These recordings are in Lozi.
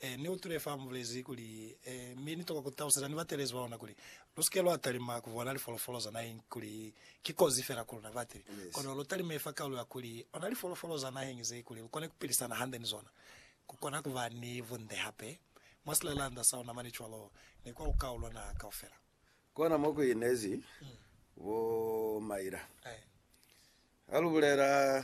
Ee, ni utwile fa mubulezi kuli, Ee, mi nitokwa kutaluseza ni batelezi ba luna kuli, Lusike lwa talima kubona lifolofolo za naheñi kuli ki kozi fela ku luna batili, kono lutalimee fa kaulu ya kuli ona lifolofolo za naheñi zee kuli lukone kupilisana hande ni zona, kukona kuba ni bunde hape mwa silalanda sa luna mane cwalo ni kwa lukau lwa naha kaufela. Kona mo ku inezi bo Maila. Ha lu bulela.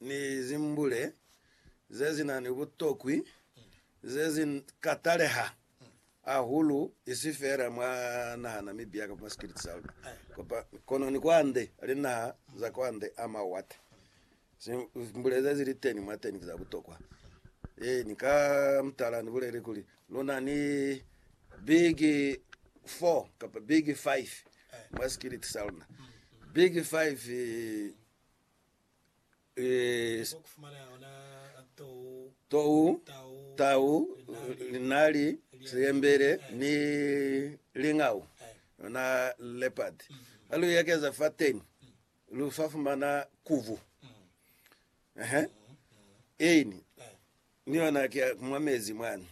ni zimbule ze si na ni butokwi ze si ka taleha hahulu, isi feela mwa naha na Mibia kamba mwa sikiliti sa luna, kono ni kwande linaha za kwande a mawate. Zimbule ze zili teni mwateni ki za butokwa. Ee, ni ka mutala ni bulele kuli lu na ni big four kamba big five mwa sikiliti sa luna. Big five tou, tau, linali, siyembele ni lingau, yona leopard. Ha lu ekeza fateni lu sa fumana kuvu. Ehe. Ini ni yona ke mwa mezi mwani.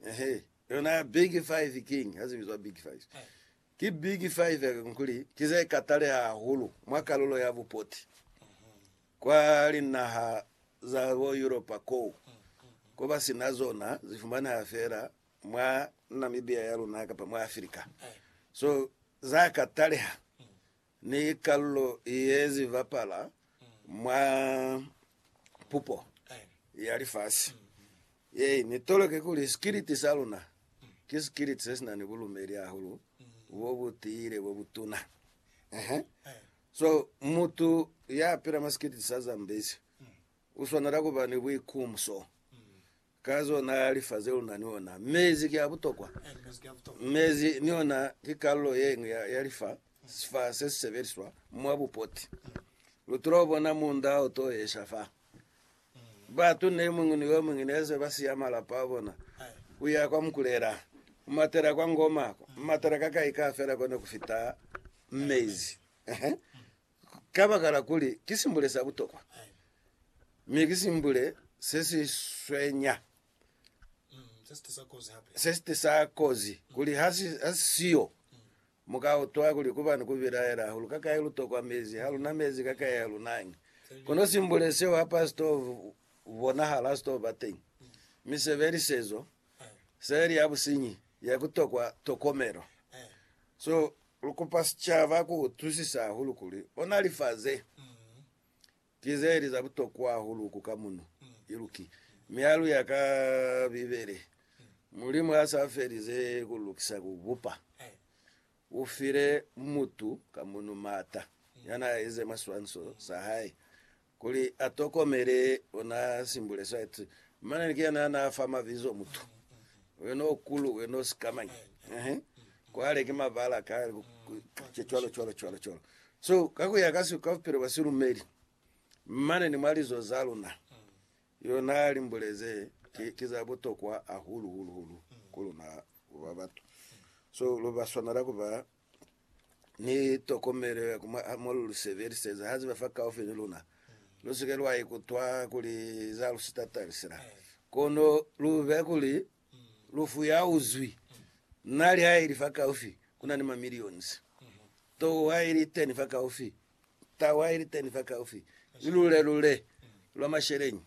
Ehe. Yona big five king, ha zibizwa big five. Ki biki fa Iveco kuli ki ze kataleha hahulu mwa kalulo ya bupoti kwa linaha za bo Yuropa koo ko ba si na zona? Zi fumaneha fela mwa Namibia ya luna kapa mwa Afrika. So za kataleha Ni kalulo ye zi bapala mwa pupo ya lifasi ye ni toloke kuli sikiliti sa luna ki sikiliti se si na ni bulumeli hahulu bo bu tiile bo bu tuna. Ehe. So, mutu ya pila mwa sikiliti sa Zambezi u swanela ku ba ni buikumso Ka zona lifase luna ni ona. Mezi ki a butokwa. Mezi ni ona ki kalulo ye ñwi ya, ya lifa, sifa se si sebeliswa mwa bupoti. Lu tula bona munda o to esha fa. Batu ne muñwi ni yo muñwi ne se ba siya malapa a bona, ku ya kwa Mukulela, ku matela kwa Ngoma, ku matela ka kai ka fela kone ku fita mezi. Kabakala kuli ki simbule sa butokwa, mi ki simbule se si swenya, se si tisa kozi, kuli ha si siyo, mu ka utwa kuli ku ba ni ku bilaela hahulu ka kai lu tokwa mezi, ha lu na mezi ka kai ha lu nañi. Kono simbule seo ha pa si to bonahala, ha si to ba teñi. Mi sebelisezo seli ya businyi ya ku tokwa tokomelo. So lu kupa sicaba ku utwisisa hahulu kuli ona lifa ze ki ze li za butokwa hahulu ku ka muno iluki. Mialu ya ka Bibele, Mulimu ha sa felize ku lukisa ku bupa, u file mutu ka muno maata ya n'a eze maswanso sa hae Kuli a tokomele, o na simbule site, mane ni kuyena ya na fa mabizo mutu. Wena o kulu, wena o sikamañi. Ehe. Kwale ki mabala ka, ke cwalo, cwalo, cwalo, cwalo. So, ka kuya ka si, ka bupilo bwa silumeli, mane ni mwa lizo za luna, yo na limbule ze ki, ki za butokwa hahulu, hulu, hulu ku luna ku ba batu. So, lu ba swanela ku ba ni tokomelo ya ku mwa mo lu lu sebeliseza. Ha ziba fa kaufi ni luna. Lu si ke lwa ikutwa kuli za lu sitata lisila, kono lu be kuli lu fuyauzwi. Na li ha ili fa kaufi, ku na ni ma millions. Tou ha ili teni fa kaufi, tau ha ili teni fa kaufi, ni lule lule lwa masheleñi.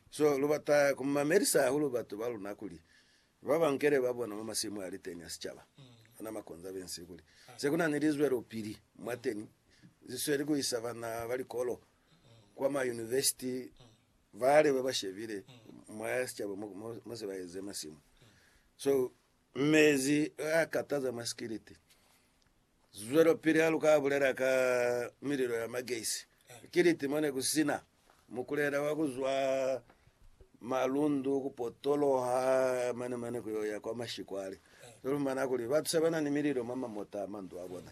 So lu bata ku mamelisa hahulu batu ba luna kuli Ba bankele ba bona mwa masimu a liteni a sicaba ona makonza bensi kuli se kuna ni lizwelopili mwateni zisweli kuisa bana ba likolo kwa ma yunivesiti bale baba shebile mwa ya sicaba mo se ba eze masimu so mezi a kataza mwa sikiliti Zwelopili ha lu ka bulela ka mililo ya magesi. Ki liti mo ne ku si na mukulela wa ku zwa malundu ku potoloha mane-mane ku yo ya kwa mashikwale. Lu lumana kuli batu se ba na ni mililo mwa mamota a mandu a bona.